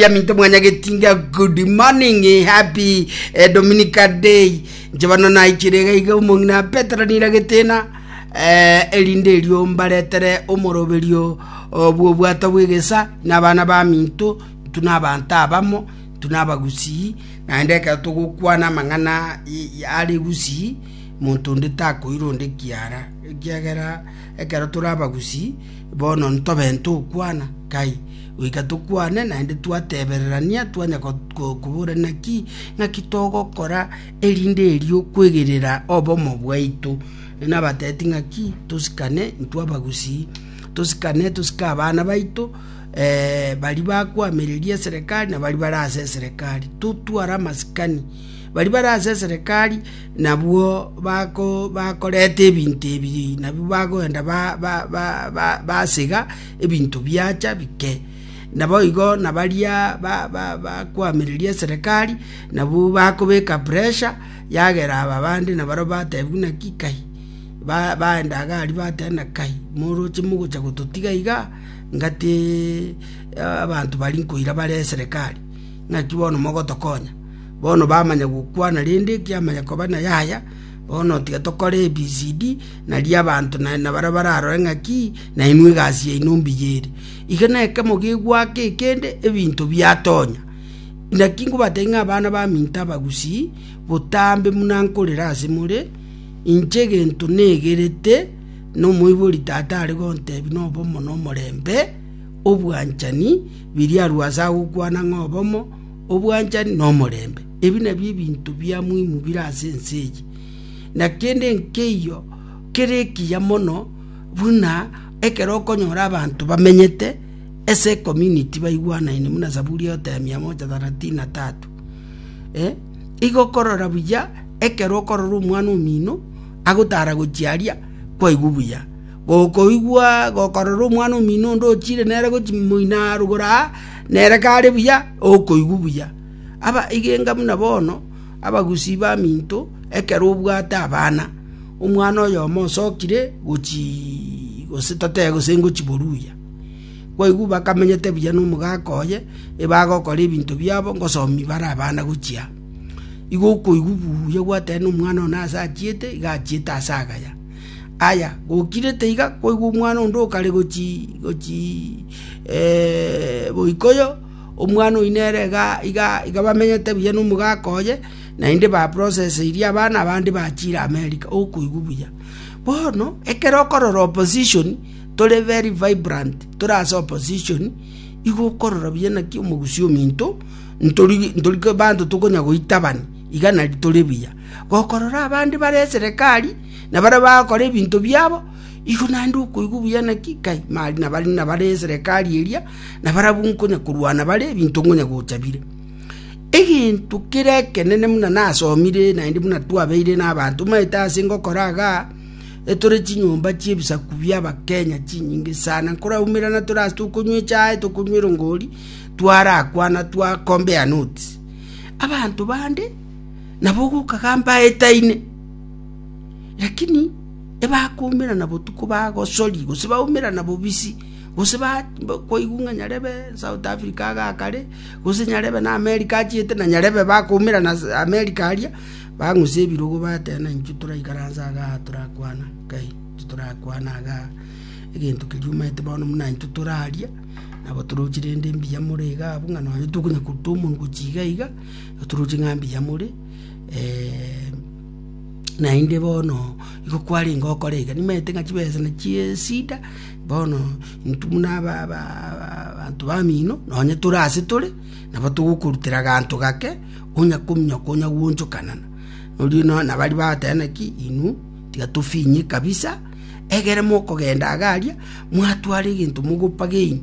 Yaminto mwanya getinga good morning happy eh, Dominica day njebano naichire iga iga omong'ina Petero nira getena eh, erinde erio mbaretere omoroberio oh, bw'obwato bw'egesa n'abana baminto tuna abanto abamo tuna abagusii naende ekero togokwana amang'ana i- i- are gusii monto onde takoira onde kiara ekiagera ekero tore abagusii Bono ntobe togokwana kai, goika tokwane, naende twatebererania twanya koburana ki ng'aki togokora, erinde erio kwegerera obomo bwaito. Nabateeti ng'aki tosikane intwe abagusii, tosikane tosike abana baito baria bakoamereria eserekari na baria bare ase eserekari, totware amasikani. Baria bare ase eserekari. Nabwo bakoreta ebinto ebi nabio bagoenda basega ebinto biacha bike. Naboigo na baria bakoamereria eserekari nabwo bakobeka pressure yagera aba bande na barabwo bateba buna ki kai, baenda iga aria bateba buna kai moroche mogocha gototiga iga ngaki abanto baria nkoira bare eserekari ngaki bono mogotokonya. Bono bamanya gokwana, rende ekiama gekoba na yaya. Bono tiga tokore ABCD, nario abanto na baria bararore ng'aki nainwe egasi yaino mbuya ere. Iga nekemo gegoaka ekende ebinto biatonya. Naki nkobatebi ng'a abana baminto abagusii, botambe buna nkorera ase more, inche egento negerete na omoibori tata are gontebi na obomo na omorembe, obwanchani, biria arue ase agokwana ng'a obomo, obwanchani na omorembe. Ebi nabio ebinto bia muhimu bire ase ense eye, na kende nkeiyo kere ekiya mono buna ekero okonyora abanto bamenyete ase ecommunity baigwanaine buna Zaburi egote ya mia moja thalathini na tatu. Igo okorora buya ekero okorora omwana omino agotara gochia aria kwaigwa buya. Gokoigwa gokorora omwana omino onde ochiire nere gochia moino aa rugoro aa, nere kare buya, okoigwa buya. Aba igenga buna bono abagusii baminto ekero obwate abana, omwana oyomo osokire gochii gose totebe gose ngochia boruya. Kwaigwa bakamenyete buya na omogaka oye, ebagokora ebinto biabo ngosomi bare abana gochia aa. Igo okoigwa buya gwateba na omwana one ase achiete, iga achiete ase agaya. Aya, gokirete iga kwaigwa omwana onde okare gochii, boikoyo, omwana oyio nere iga iga iga bamenyete buya na omogaka oye, naende ba proceseirie abana abande bachire America, okoigwa buya. Bono, ekero okorora opposition, tore very vibrant, tore ase opposition, igo okorora buya naki omogusii ominto, ntori ntori abanto tokonya goitabani, iga nari tore buya. Gokorora abande bare eserekari, na baria bagokora ebinto biabo, igo naende okoigwa buya naki kai nabare nabare eserekari eria, na barabwo nkonya korwana bare ebinto nkonya gocha bire. Egento kere ekenene buna nasomire naende buna twabeire na abanto omanyete ase ngokora igaa, etore chinyomba chia ebisaku bia abakenya chinyinge sana, nkoraumerana tore ase tokonywa echae, tokonywa erongori, twarakwana twa compare notes. Abanto bande. nabo ogokagamba aetaine. Lakini ebakoumerana botuko bagosori gose baumerana bobisi gose kwaigwa ng'a nyarebe South Africa iga akare gose nyarebe na America achiete na nyarebe bakoumerana America aria, bang'use ebirogo bateba na intwe toraikaranse iga aa torakwana nkai, intwe torakwana iga aa egento keria omanyete bono buna intwe toraria nabo toroche rende mbuya more iga abwo ng'a nonye tokonya koruta omonwe gochia iga iga. Oturuche ng'a mbuya more, naende bono igo kwarenge okore iga. Nimaete ng'a chibesa na chiesida, bono intwe buna abanto bamino, nonye tore ase tore, nabo togokorutera ganto gake, onya kominyoka onya gwonchokanana. Oria nonya nabo aria bagoteba naki, inwe tiga tofinye kabisa, egere mokogenda iga aria, mwatwara egento mogopageini.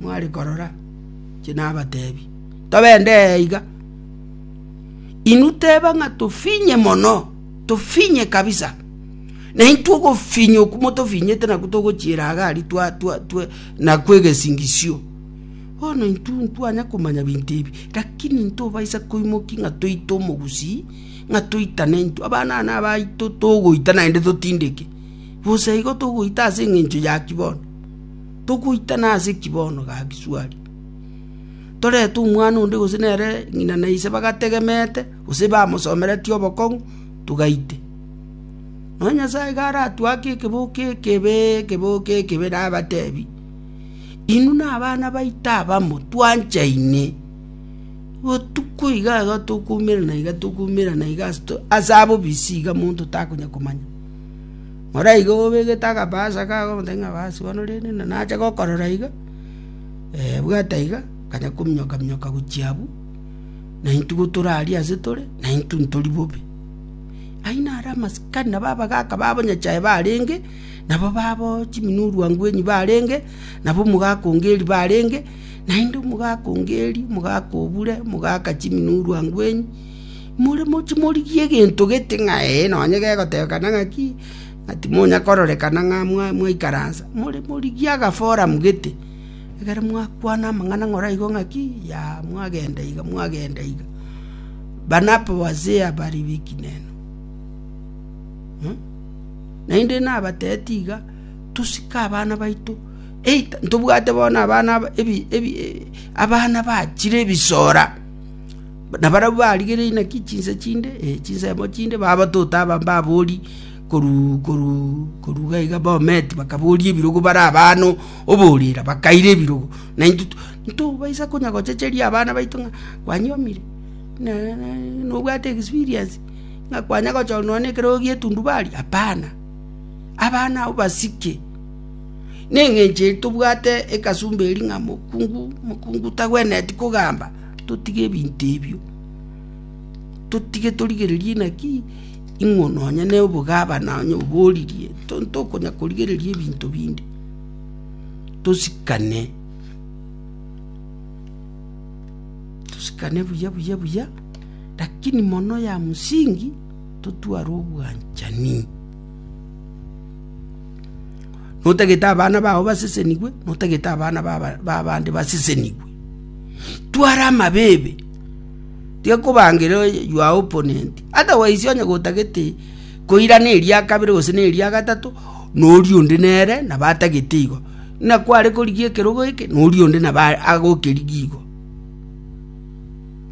mware korora, inche nabatebi, tobende ee iga, inwe teba ng'a tofinye mono, tofinye kabisa, na intwe ogofinya okwo motofinyete nakwo togochiera iga aria twa twa twa nakwo egesingisio. Bono intwe ntitwanya komanya binto ebi, rakini ntobaisa koimoki ng'a toite omogusii, ng'a toitane intwe abana aba nabaito togoita naende totindeke, bosa igo togoita ase eng'encho ya ki bono? Togoitana ase ki bono, gaki Suari? Torete omwana onde gose nere ng'ina na ise bagategemeete, gose bamosomeretie obokong'u, togaite. Nonya Nyasae garatue ake ekeboko ekebe, ekeboko ekebe, nabatebi, Inwe nabana baito abamo, twanchaine, botuko iga iga tokoumerana iga tokoumerana iga ase abobisi iga monto takonya komanya. Moraige obegete agabaasa kago omotaki ng'a baasi bono rende na nache gokorora iga, bwata iga, akanya kominyoka minyoka gochia abwo, na intwe go tore aria ase tore, na intwe ntori bobe. Ayio naro amasikani nabo abagaka babo nyachae barenge, nabo babo chiminwa orwangwenyi barenge, nabo omogaka o Ngeri barenge, naende omogaka o Ngeri, omogaka o Bure, omogaka chiminwa orwangwenyi. More moche morigie egento gete ng'a Ee, nonya gegotebekana ng'aki, ng'a timonya kororekana ng'a mwaikaransa, more morigie agaforum gete, ekero mwakwana amang'ana ng'ora igo ng'aki, yaah mwagenda iga mwagenda iga. Bana abwo wazee abare b'ekinena. Naende nabateeti iga, tosike abana baito, either ntobwate bono abana aba ebi ebi abana bachire ebisora. Nabarabwo barigereiri naki chinsa chinde, ee, chinsemo chinde, babatuta aba mbabori korwa iga iga bometi, bakaboria ebirogo bare abana oborera, bakaira ebirogo. Na intwe ntobaisa konya gochecheria abana baito ng'a kwanyomire, nobwate experience ng'a kwanya gochora nonye na ekerogo gia etundubari? Hapana. Abana abwo basike, neng'encho eri tobwate ekasumba eria ng'a mokungu, mokungu tagwenereti kogamba. Totige ebinto ebio, totige torigererie naki ing'o nonya ne obogabana onye oboririe, tokonya korigereria ebinto binde, tosikane, tosikane buya buya buya, lakini mono ya msingi totware obwanchani. Notagete abana bao basesenigwe, notagete abana ba abande basesenigwe. Twara amabibi, tiga kobangera your opponent. Otherwise onye gotagete koirana eria kabere gose na eria gatato, nori onde nere nabo atagete igo. Ng'a kware korigia ekerogo eke, nori onde nabo a- agokerigia igo.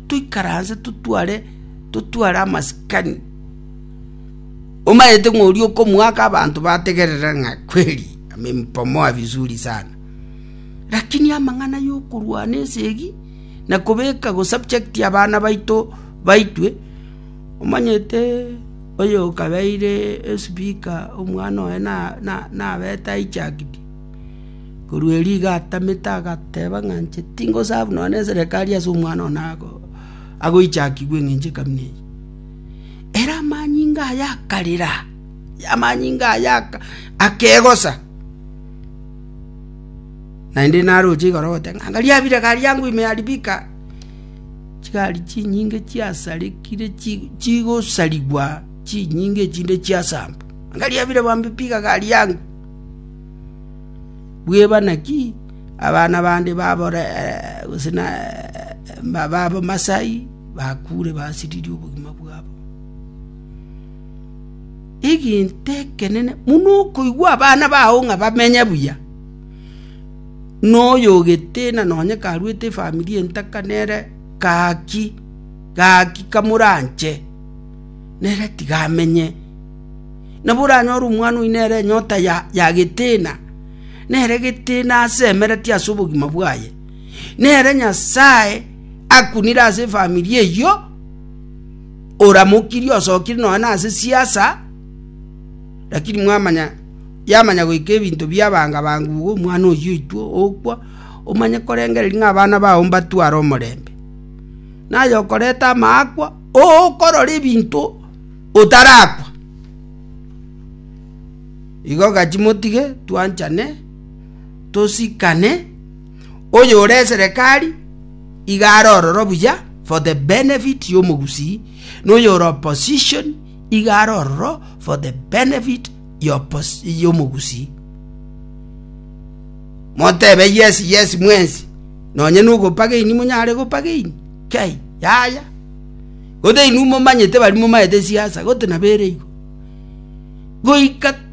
Toikaranse totware, totware amasikani, omanyete ng'a oria okomoaka abanto bategerere ng'a kweli amempomoa vizuri sana. Lakini amang'ana y'okorwana esegi na kobeka go subject abana baito baitwe, omanyete oyo okabeire espeaker omwana oye nabete hijacked, korwa erio iga atamete agateba ng'a inche tingo serve nonye neserekari ase omwana one ago hijackigwe eng'encho ekamina eye. Ere amanyinga aye akarera, amanyinga aye akegosa. Naende naroche igoro goteba ng'a, Angaria abire garia angwe ime aribika, chigari chinyinge chiasarekire chigosarigwa chinyinga echinde chiasambwa. Angaria abire bambipika gari angwe. Bweba naki abana bande gose na babamasai bakure basiririe obogima bwabo. egento ekenene buna okoigwa abana bao ng'a bamenye buya, na oyo ogetena nonye karuete efamiri entaka nere gaki gaki kamoranche, nere tiga amenye. Nabo oranyore omwana oyio nere enyota ya yagetena, nere egetena ase emereti ase obogima bwaye. Nere Nyasaye akunire ase efamiri eyio. Oramokirie osokire nonya nase siasa, lakini mwamanya yamanya goika ebinto biabanga banga igo omwana oyio oitwa okwa, omanye korengereria ng'a abana bao mbatware omorembe. Naye okoreta amaakwa okorora ebinto otarakwa. Igo gaki motige twanchane, tosikane. oyore eserekari iga are ororo buya for the benefit y'omogusii, na oyore opposition iga are ororo for the benefit y'oppos- y'omogusii. Motebe yes yes mwensi, nonye nogopageini monyare gopageini, kei, yaya. Gothe inwe momanyete bari momaete siasa, gotenabere igo. Goika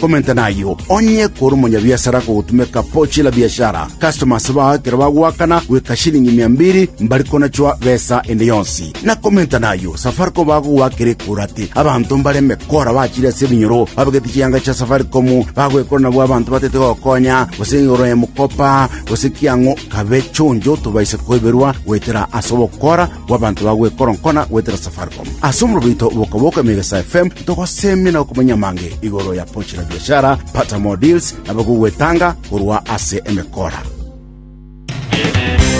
Komenta nayio, onye kore omonyabiasara akogotumeka pochi la biashara, customers bao ekero bagoakana goika shilingi mia mbiri, mbari konachwa besa ende yonsi. Na komenta nayio, Safaricom bagogoakera ekura ati abanto mbare emekora bachire ase ebinyoro babegete chianga chia Safaricom bagoekora nabwo abanto batete gokonya gose igoro y'emokopa gose kiang'o kabe chonjo tobaise koiberwa goetera ase ogokora bw'abanto bagoekoronkona goetera Safaricom. Ase omorobo oito bokaboko Emegesa FM togosemia na gokumanyia amange igoro ya Pochi la Biashara, Pata More Deals na bagogwetanga korwa ase emekora.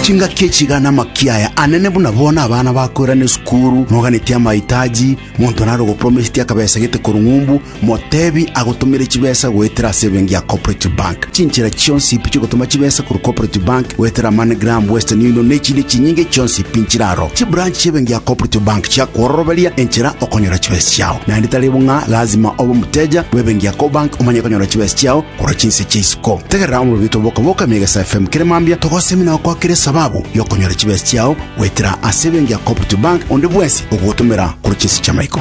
Chingaki echi iga namakia aya anene buna bono abana bakoirana esukuru, noganetie amaitaji, monto nare ogopromisetie akabesa gete korwa ng'umbu, Motebi agotomere chibesa goetera ase ebenki ya Cooperative Bank. Chinchera chionsi pi chigotoma chibesa korwa Cooperative Bank goetera MoneyGram, Western Union na echinde chinyinge chionsi pi nchire aro. Chibranch chi'ebenki ya Cooperative Bank chiakwororoberia enchera okonyora chibesa chiao. Naende tari bo ng'a lazima obe omoteja bw'ebenki ya Cobank omanye konyora chibesa chiao korwa chinse chia isiko. Tegerera omorobito bw'okoboka mia egesa FM kere mambia togosemi na gokwakera esababu y'okonyora chibesa chiao goetera ase ebenki ya Cooperative Bank onde bwensi ogogotomera korwa chinse chi'amaiko.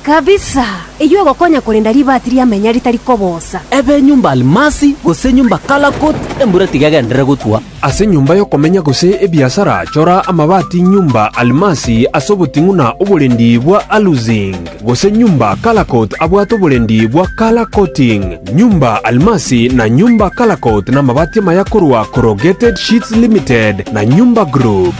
Kabisa! Eyio egokonya korenda ribaati ria menya ritari kobosa. Ebe enyomba Almasi, gose enyomba Kalakot, embura tigegenderere gotwa. Ase enyomba y'okomenya gose ebiasara chora amabaati nyomba Almasi ase oboting'una oborendi bwa Alusing, gose nyomba Kalakot abwate oborendi bwa Kalakoting. Nyomba Almasi na nyomba Kalakot namabaati amaya korwa Corrugated Sheets Limited na Nyomba Group.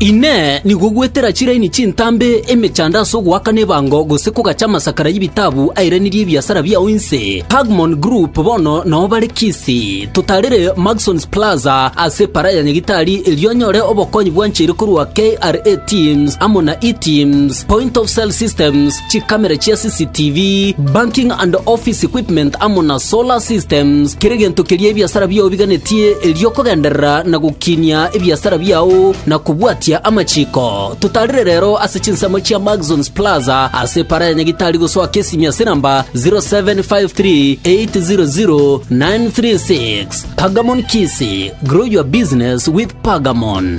Inee! Nigo gwetera chiraini chintambe emechando ase ogoakana ebango gose kogacha amasakara y'ebitabu airanirie ebiasara biao inse? Pagmon Group bono nao bare Kisii. Totarire Maxons Plaza ase Epara ya Nyagitari erio onyore obokonyi bwancheire korwa KRA Teams amo na E-Teams. Point of sale systems, chikamera chia CCTV, banking and office equipment amo na solar systems, kera egento keria ebiasara biao biganetie erio okogenderera na gokinia ebiasara biao na kobwatia amachiko. Totarire rero ase chinsemo chia Maxons Plaza ase para ya Nyagitari gosoa Kesimi ase namba 0753800936. Pagamon Kisi, grow your business with Pagamon.